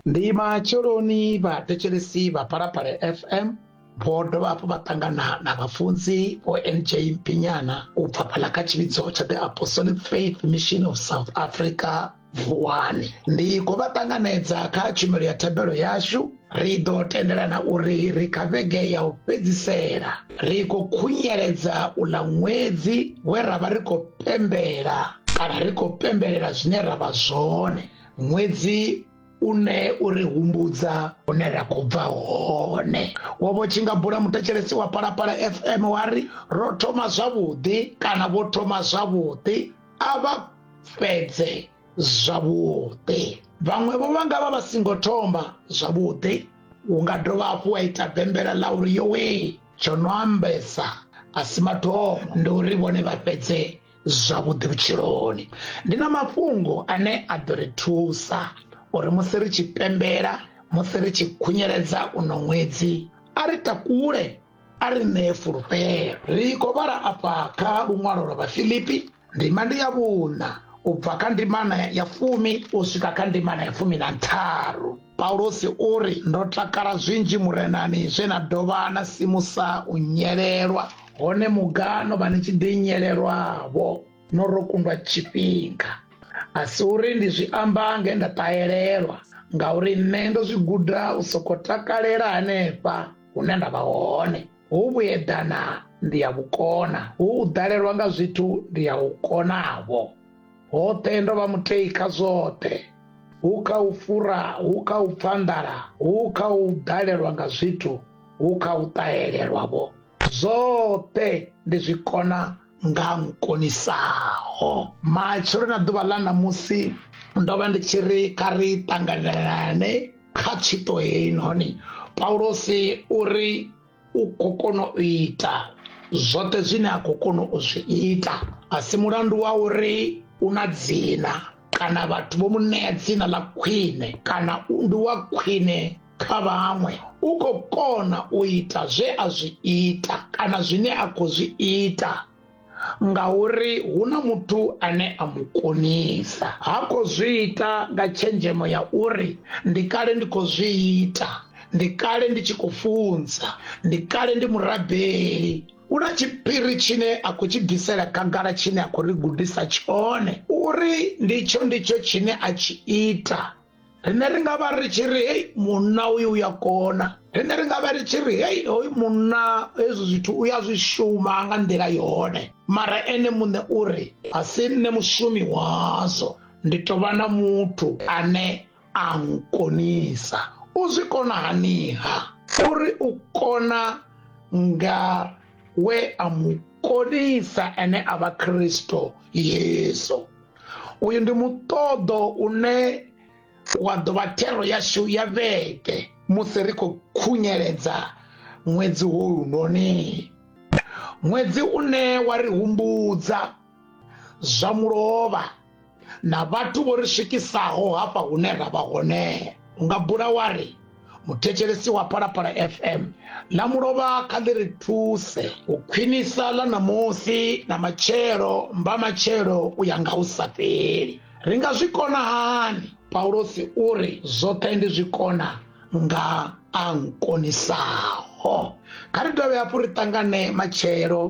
ndi matsheloni vhathetshelesi vha phalaphala fm vho dovha hafhu vha ṱangana na vhafunzi vho nj pinyana u bva fhala kha tshivhidzo tsha the apostolic faith mission of south africa vuwani ndi khou vha ṱanganedza kha tshumelo ya thabelo yashu ri ḓo tendelana uri ri kha vhege ya u fhedzisela ri khou khunyeledza u ḽa ṅwedzi we ra vha ri khou pembela kana ri khou pembelela zwine ra vha zwone ṅwedzi une u ri humbudza hune ra khou bva hone wo vho tshi nga bula muthetshelesi wa palapala fm wa ri ro thoma zwavhuḓi kana vho thoma zwavhuḓi a vha fhedze zwavhuḓi vhaṅwe vho vha nga vha vha singo thoma zwavhuḓi u nga dovha hafhu wa ita bembela ḽa uri yowe tsho no ambesa a si mathomo ndi uri vhone vha fhedze zwavhuḓi vhutshiloni ndi na mafhungo ane a ḓo ri thusa uri musi ri tshi pembela musi ri tshi khunyeledza uno ṅwedzi a ri takule a ri ṋee fulufhelo ri khou vhala afha kha luṅwalo lwa vhafilipi ndima ndi ya vhuṋa u bva kha ndimana ya fumi u swika kha ndimana ya fumi na ntharu paulosi u ri ndo takala zwinzhi murenani zwe na dovha na simusa u nyelelwa hone mugano vha ni tshi ḓi nyelelwavho no ro kundwa tshifhinga a si uri ndi zwi amba nge nda ṱahelelwa ngauri nṋe ndo zwi guda u soko takalela hanefha hune nda vha hone hu vhuedana ndi ya vhukona hu u ḓalelwa nga zwithu ndi ya u konavho hoṱhe ndo vha mutei kha zwoṱhe hu kha u fura hu kha u pfa nḓala hu kha u ḓalelwa nga zwithu hu kha u ṱahelelwavho zwoṱhe ndi zwi kona nga mu konisaho matshelo na ḓuvha ḽa ṋamusi ndo vha ndi tshi ri kha ri ṱanganelane kha tshito heyi noni paulosi u ri u khou kona u ita zwoṱhe zwine a khou kona u zwi ita a si mulandu wa uri u na dzina kana vhathu vho mu ṋea dzina ḽa khwine kana ndi wa khwine kha vhaṅwe u khou kona u ita zwe a zwi ita kana zwine a khou zwi ita ngauri hu na muthu ane a mu konisa ha khou zwi ita nga tshenzhemo ya uri ndi kale ndi khou zwi ita ndi kale ndi tshi khou funza ndi kale ndi murabeli u na tshiphiri tshine a khou tshi bvisela khagala tshine a khou ri gudisa tshone uri nditsho nditsho tshine a tshi ita rine ri nga vha ri tshi ri hei munna uyu u ya kona rine ri nga vha ri tshi ri hei hoyu munna hezwi zwithu u ya zwi shuma nga nḓila yone mara ene muṋe u ri a si nṋe mushumi wazwo ndi tou vha na muthu ane a nkonisa u zwi kona haniha uri u kona nga we a mu konisa ene a vha khristo yesu uyu ndi muṱoḓo une wa ḓo vha thero yashu ya vhege musi ri khou khunyeledza ṅwedzi wo lunoni ṅwedzi une wa ri humbudza zwa mulovha na vhathu vho ri swikisaho hafha hune ra vha hone u nga bula wa ri muthetshelesi wa phalaphala fm ḽa mulovha kha ḽi ri thuse u khwinisa ḽa ṋamusi na matshelo mba matshelo u ya nga u sa fheli ri nga zwi kona hani paulosi u ri zwoṱhe ndi zwi kona nga a nkonisaho kha ri dovhe hafhu ri ṱangane matshelo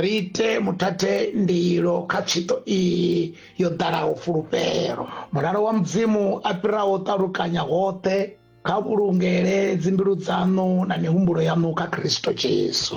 ri ite muthathe ndilo kha tshito iyi yo ḓalaho fulufhelo mulalo wa mudzimu a fhiraho ṱalukanya hoṱhe kha vhulungele dzimbilu dzaṋu na mihumbulo yaṋu kha khristo jesu